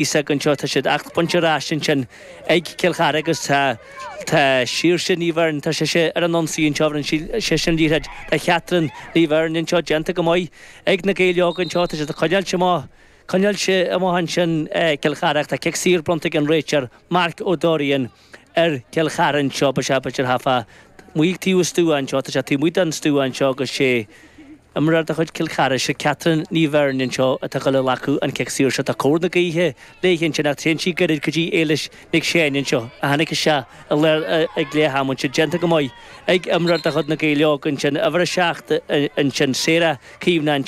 isteach anseo, tá sí bainte ar ais ansin ag Cill Chartha agus tá tá Seoirse Ní Bheirn, tá sise ar an ionsaí anseo bhronn sise an liathróid do Chatherine Ní Bheirn anseo déanta go maith ag na Gaeil óga anseo tá siad ag coinneáilt amach coinneáilt amach ansin Cill Chartha ach tá cic saor bronnta ag an réiteoir Mark Ó Doibhrín ar Cill Chartha anseo ba sean pictiúr thafa amuigh den stua anseo, tá sé taobh amuigh den stua anseo agus is í imreoir de chuid Cill Chartha anseo Catherine Ní Bheirn anseo atá ag dul a ghlacadh an cic saor seo, tá cóir na gaoithe léi ansin ach téann sí gairid go dtí Éilis Nic Sheáin anseo a tháinig isteach i lár ag leath ama ansin, déanta go maith ag imreoir de chuid Na Gaeil Óg ansin, uimhir a seacht ansin, Sarah Caomhán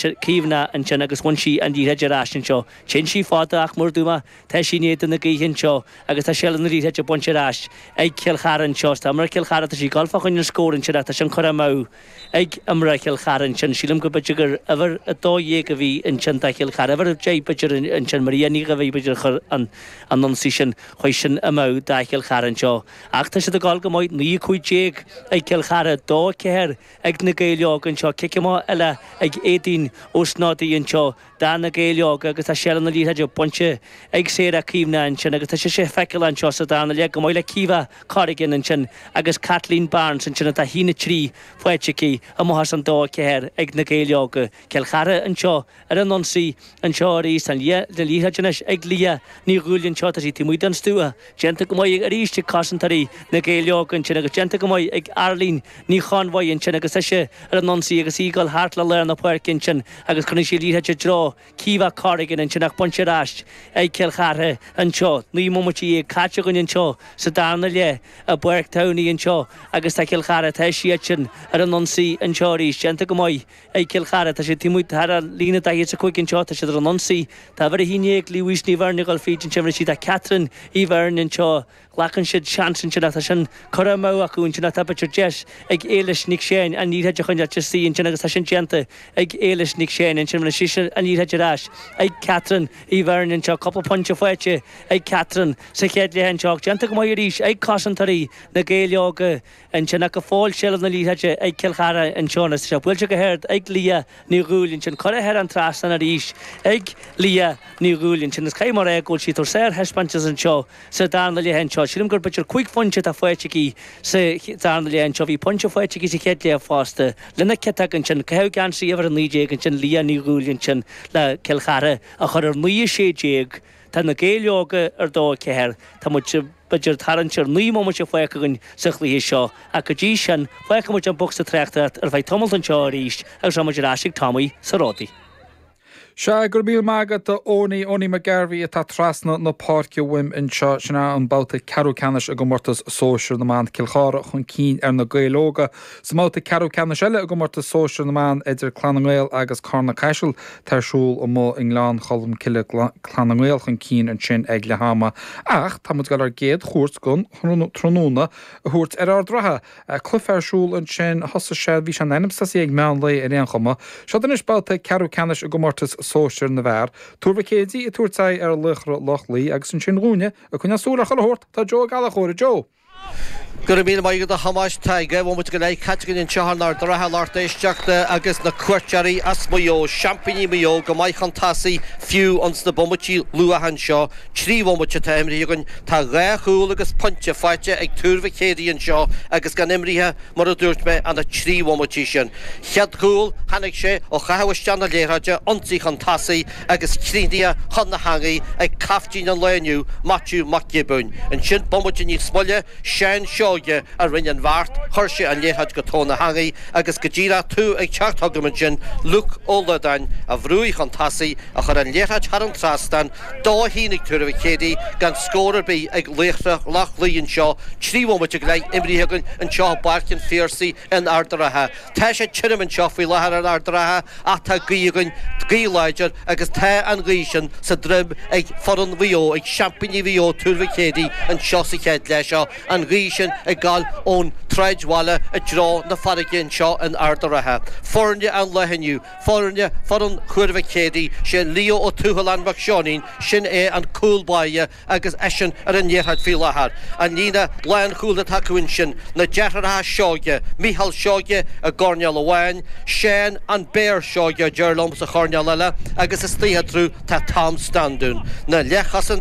ansin agus bhain sí an liathróid ar ais anseo, téann sí fada ach Murduma Tá sí in éadan na gaoithe anseo agus tá seilbh na liathróide bainte ar ais ag Cill Chartha anseo. Is dá mba ar Chill Chartha, tá sí ag gabháil fá choinne an scór ansin ach tá sin curtha amú ag imreoir Chill Chartha ansin. Sílim go mb'fhéidir gur uimhir a dó dhéag a bhí ansin do Chill Chartha, uimhir a deich b'fhéidir ansin. Maria Ní Dhuibhir b'fhéidir a chur an an ionsaí sin chuaigh sin amú do Chill Chartha anseo. Ach tá siad ag gabháil go maith, naoi a cúig déag ag Cill Chartha, dó a ceathair ag Na Gaeil Óga anseo, cic amach eile ag Éadaoin Ó Snodaigh anseo, Do na Gaeil óga agus tá seilbh na liathróide bainte ag Sarah Caomhnaith ansin agus tá sise feiceálach anseo sa darna leath go maith le Caoimhe Corrigan ansin agus Kathleen Barnes ansin atá ise trí phointe faighte aici amach as an dó a ceathair ag na Gaeil óga Cill Chartha anseo ar an ionsaí anseo arís tá an liathróid anois ag Leah Ní Dhúill anseo tá sí taobh amuigh den stua Déanta go maith arís ag cosantóirí Na Gaeil Óga ansin agus déanta go maith ag Arlene Ní Chathánbhaidh ansin agus ise ar an ionsaí agus í ag dul thart le lár na páirce ansin agus bhronn sí an liathróid i dtreo Caoimhe Corrigan ansin ach bainte ar ais ag Cill Chartha anseo. Naoi mbomaite déag caite againn anseo sa darna leath i bPáirc Towney anseo agus tá Cill Chartha, tá siadsan ar an ionsaí anseo arís. Déanta go maith. ag Cill Chartha. Tá siad taobh amuigh thar an líne 45 anseo, tá siad ar an ionsaí. Tá Bheirithe Uí Néill, Liadh agus Ní Bheirn ag dul fríd anseo, rinne sí fhad le Catherine Ní Bheirn anseo. Glacann siad seans ansin ach tá sin curtha amú acu ansin ach tá b'fhéidir deis ag Éilis Nic Sheáin an liathróid a choinneáilt istigh ansin agus tá sin déanta ag Éilis Nic Sheáin ansin, bhronn sise an liathróid ar ais ag Catherine Ní Bheirn anseo. Cúpla pointe faighte ag Catherine sa chéad leath anseo ach déanta go maith arís ag cosantóirí Na Gaeil Óga. Ansin ach go fóill seilbh na liathróide ag Cill Chartha anseo is seo buailte go hard ag Liadh Ní Dhúill ansin curtha thar an trasnán arís ag Liadh Ní Dhúill ansin is caithfidh mé a rá go bhfuil sí ag tabhairt sár-thaispeántas anseo sa darna leath anseo sílim go mb'fhéidir cúig phointe atá faighte aici sa darna leath anseo bhí pointe faighte aici sa chéad leath fosta lena ciotóg ansin ag caitheamh geansaí uimhir a naoi déag ansin Liadh Ní Dhúill ansin le Cill Chartha a chur ar naoi a sé déag Tá na Gaeil óga ar dó a ceathair. Tá muid b'fhéidir tarraingt ar naoi mbomaite fágtha againn sa chluiche seo, ach go dtí sin, fágfaidh muid an bocsa tráchtaireachta ar feadh tamalt anseo arís agus rachaidh muid ar ais ag Tommy sa ródaí. Sea, go raibh míle maith agat, a Eoiní, Eoiní McGarvey atá trasna na páirce uaim anseo. Sin é an babhta ceathrú ceannais i gComórtas Sóisear na mBan, Cill Chartha chun cinn ar na Gaeil Óga, Sa mbabhta ceathrú ceannais eile i gcomórtas sóisir na mban idir Clann na nGael agus Carna Caiseal, atá ar siúl amuigh i nGleann Cholm Cille Clann na nGael chun cinn ansin ag leath ama ach tá muid ag dul ár gcéad chuairt den tráthnóna a thabhairt ar Ard Ratha, cluiche ar siúl ansin thosaigh sé, bhí sé in ainm 's tosú ag meán lae ar aon chuma. Siod anois babhta ceathrú ceannais i gcomórtas sóisir na bhfear. Tuar Mhic Éadaigh ag tabhairt aghaidh ar Laochra Loch Lao agus ansin dhúinne ag coinneáil súil ar chuile shórt tá Joe Ó Gallchóir, Joe! Go raibh míle maith agat a Thomáis, tá dhá bhomaite go leith caite againn anseo in Ard a' Rátha a lucht éisteachta agus na cuairteoirí as Maigh Eo, seaimpíní Mhaigh Eo go maith chun tosaigh fiú ins na bomaití luatha anseo, trí bhomaite atá imrithe againn, tá dhá chúl agus pointe faighte ag Tuar Mhic Éadaigh anseo agus gan imrithe mar a dúirt mé ach na trí bhomaite sin. Chéad chúl, tháinig sé ó chaitheamh isteach na liathróide, ionsaí chun tosaigh, agus críochnaíodh chun na heangaí ag caiftín an lae inniu, Maitiú Mac Giobúin. Ansin, bomaite níos moille, Seán Seoige a rinne an bheart, chuir sé an liathróid go tóin na heangaí agus go díreach 's tú ag teacht chugam ansin, Luke Ó Loideáin a bhrúigh chun tosaigh, a chuir an liathróid thar an trasnán, dó a haon ag Tuar Mhic Éadaigh, gan scór ar bith ag Laochra Loch Lao anseo, trí bhomaite go leith imrithe againn anseo i bPáirc an Phiarsaigh, in Ard a' Rátha. Tá sé tirim anseo faoi láthair in Ard a' Rátha ach tá gaoth againn, gaoth láidir, agus tá an ghaoth sin sa droim ag foireann Mhaigh Eo, ag seaimpíní Mhaigh Eo, Tuar Mhic Éadaigh, anseo sa chéad leath seo, an ghaoth sin ag gabháil ón tsráidbhaile i dtreo na farraige anseo in Ard a' Rátha. Foirne an lae inniu, foirne, foireann Thuar Mhic Éadaigh, sé Leo Ó Tuathaláin Mac Seoinín, sin é an cúl báire, agus eisean ar an liathróid faoi láthair, an líne lánchúil atá acu ansin, na deartháireacha Seoige, Micheál Seoige i gcoirnéal amháin, Seán 'An Béar' Seoige a deir liom sa choirnéal eile agus istigh eatarthu tá Tom Standún, na leathchosantóir